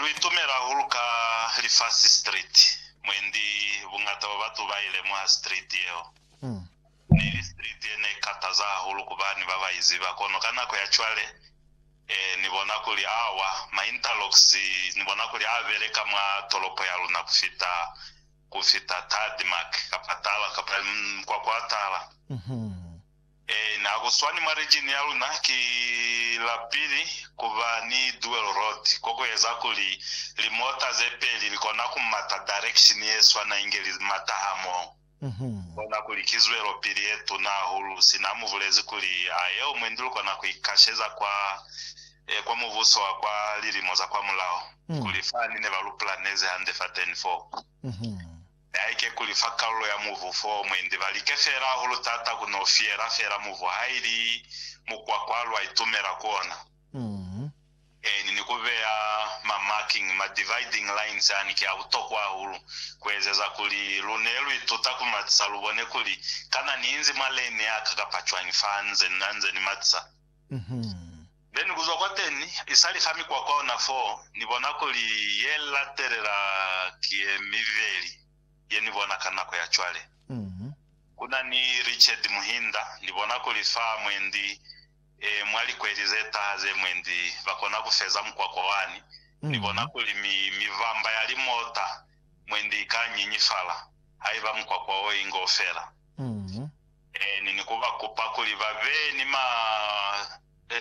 Lu itumela hahulu ka lifasi street, mwendi buñata bwa batu ba ilemuha street yeo. Neili street ye ne kataza hahulu ku bani ba ba iziba, kono ka nako ya cwale Ni bona kuli awa ma interlocks Ni bona kuli a beleka mwa tolopo ya luna ku fita, ku fita tarmac kapa tala, kapa mkwakwa wa tala. Ee, na ku swani mwa region ya luna ki la pili ku ba ni dual road, ko ku eza kuli limota ze peli li kona ku mata direction ye swana inge li mata hamoho. Ku kona kuli ki zwelopili ye tuna hahulu, sina mu bulezi kuli a yeo mwendi lu kona ku ikasheza kwa, ee, kwa Mubuso wa kwa lilimo za kwamulaho, kuli fani ne ba lu planezi hande fateni foo. Haike kuli fa kalulo ya mubu fo mwendi ba like feela hahulu taata ku no fiyela feela mubu ha ili mukwakwa lwa itumela ku ona, eeni, ni ku beya ma marking, ma dividing lines ani ki a butokwa hahulu ku ezeza kuli lu ne lu ituta ku matisa lu bone kuli kana ni inzi mwa lane ya ka kapa cwañi fa nze, na nze ni matisa. Then kuzwa kwateni, isali ka mikwakwa ona fo, Ni bona kuli ye latelela ki ye mibeli ye Ni bona ka nako ya cwale. Kuna ni Richard Muhinda, Ni bona kuli fa mwendi, e, mwa likweli ze taha ze mwendi, ba kona ku feza mukwakwa wani. Ni bona kuli mi, mivamba ya limota mwendi ika nyinyifala, haiba mukwakwa wo inge u fela. Ni ni kuba kupa kuli ba be ni ma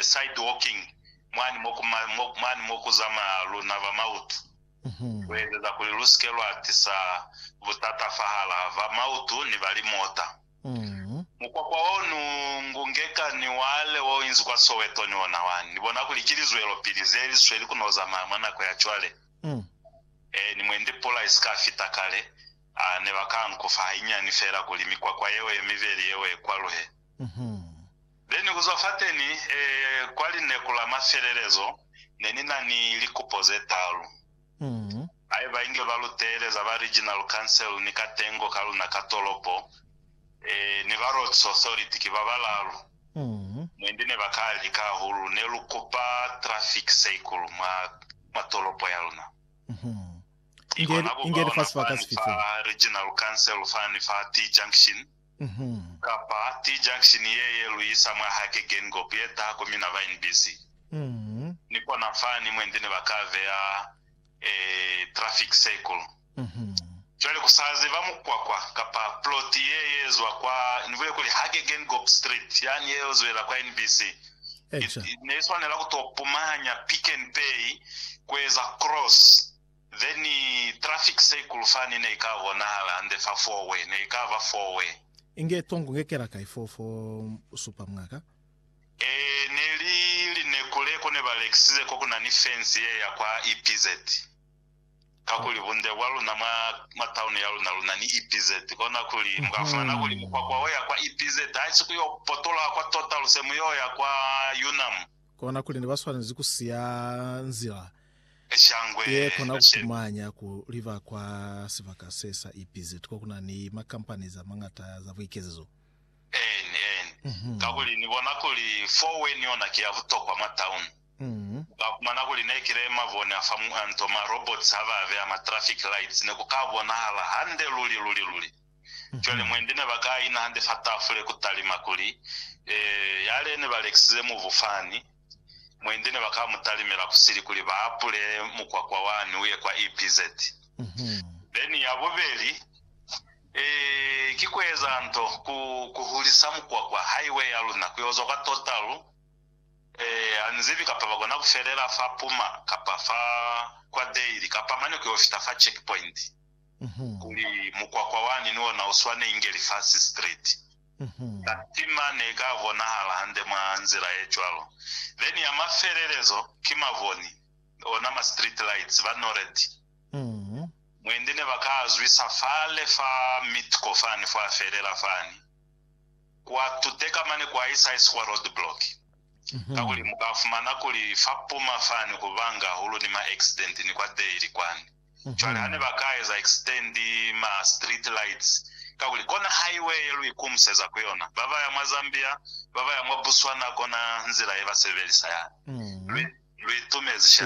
side walking mwani mo ku ma, mwani mo ku zamaya luna ba mautu, ku ezeza kuli lu sike lwa tisa butata fahala ba mautu ni ba limota. Mukwakwa o nu ngungeka ni wale wo inzi kwa Soweto ni ona wani. Ni bona kuli ki lizwelopili ze li sweli ku no zamaya mwa nako ya cwale. Ee, ni mwendi pula i si ka fita kale, A ne ba ka nkufa hainyani fela kuli mikwakwa yeo ye mibeli yeo e kwaluhe. Be ni kuzwa fateni, e, kwa lineku la mafelelezo, ne ni na ni likupo ze talu. Haiba inge ba lu teeleza ba Regional Council ni katengo ka luna ka tolopo, e, ni ba Roads Authority, ki ba balalu, mwendi ne ba ka lika hahulu, ne lu kupa traffic seikulu mwa, mwa tolopo ya luna. Inge, inge li fa sibaka sifi fo? Regional Council fani fa T-junction, kapa T-junction ye ye lu isa mwa hake Geingob ye taha ku mina ba NBC. Ni kona fani mwendi ne ba ka beya e traffic circle. Cwale ku sa ziba mukwakwa kapa plot ye ye zwa kwa, ni bule kuli hake Geingob Street yani ye yo zwela kwa NBC, Eca. Ne i swanela ku to pumanya Pick n Pay ku eza cross, then traffic circle fani ne i ka bonahala hande fa four way, ne i ka ba four way. Inge tongo nge kela kai foo fo supa mwa ka? Ee, ne li lineku le ko ne ba lekisize ko ku na ni fence ye ya kwa EPZ. kakuli bunde bwa luna mwa, mwa taunu ya luna, luna ni EPZ, kona kuli mu ka fumana kuli mukwakwa wo ya kwa EPZ haisi ku yo potoloha kwa tota luse mu yo ya kwa Yunnan. Kona kuli ne ba swanezi ku siya nzila Shangwe ye kona ku shemi. fumanya ku liba kwa sibaka se sa EPZ ko ku na ni makampani za mañata za buikezezo. Eeni, eeni. Kakuli ni bona kuli four-way ni yona ki ya butokwa mwa taunu. Umm. Ba kumana kuli ne ki le mavone a fa muanto, ma robots ha ba beya ma traffic lights ne ku ka bonahala hande luli, luli, luli. Cwale mwendi ne ba ka ina hande fa tafule ku talima kuli, Ee, yale ne ba lekisize mubu fani. Mwendi ne ba ka mu talimela kusili kuli ba apule mukwakwa wani uye kwa EPZ. Then ya bubeli, ee, ki ku eza nto, ku, ku hulisa mukwakwa, highway ya luna, ku yo zwa kwa Total. Ee, ha ni zibi, kapa ba kona ku felela fa Puma, kapa fa kwa Dale, kapa mane ku yo fita fa checkpoint, kuli mukwakwa wani ni ona u swane inge lifasi street. Katima ne ka bonahala hande mwa nzila ye cwalo. Then ya mafelelezo, ki mavoni, ona ma street lights, ba Nored, mwendi ne ba ka a zwisa fale fa Mitco fani, fo a felela fani. kuatuteka mane kwa Isais kwa roadblock kakuli mukafumana kuli fa puma fani kubanga hahulu ni ma accident ni kwa Dale kwani. Cwale hane baka eza extend ma street lights kakuli kona highway ye luikumuseza kuyona, babaya mwa Zambia, babaya mwa Botswana kona nzila yebasebelisa yani. Luitumezi sha.